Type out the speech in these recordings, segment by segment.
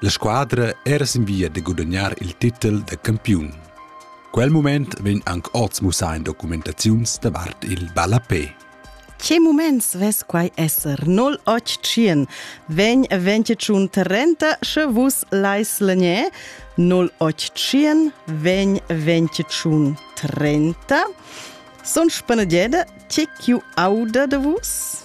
La squadra era sin via da gudagnar il titel da campiun. Quel mument vegn anc oz mussà in documentaziuns davart il ballapé. Che muments ves quai esser 081 vegn 21 30 sche vus lais legnè 081 vegn 21 30 son spanegede che chiu auda de vus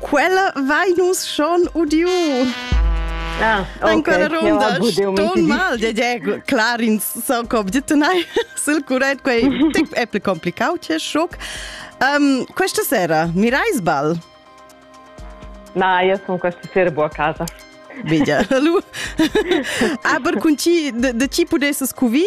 Quella vai nus schon udiu. Ah, okay. En quella ronda ston mal de de clar in so cob ditunai sul curret quei tic è pli complicato che schock. Um, questa sera mirai sbal. Na, io sono questa sera buona a casa. Vedi, lu. Aber con chi de, de chi pudesses cuvi?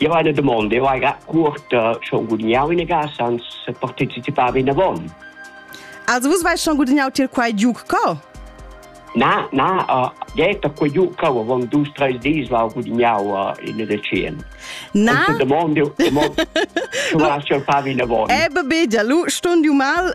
Io hai una domanda, io hai cuorta schon gudignau in casa, ans partecipava in avon. Also vus vais schon gudignau til quai giuc co? Na, na, uh, geta quei giuc co avon dus treis dis la gudignau uh, in decen. Na? Und domande, domande, tu hast schon favi in avon. Eh, bebe, già lu stund ju mal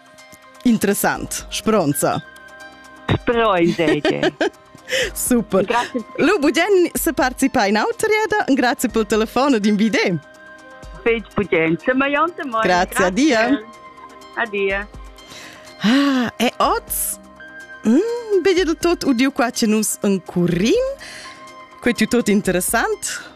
Interessant, spronza. Sproi seige. Super. Grazie. Lu bugen se participa in autrieda, grazie pel telefono din vide. Fetg bugen, se maiante moi. Grazie, adia. Adia. Ah, e oz mm, vedi du tot udiu qua che nus encurim. Quei tu tot interessant.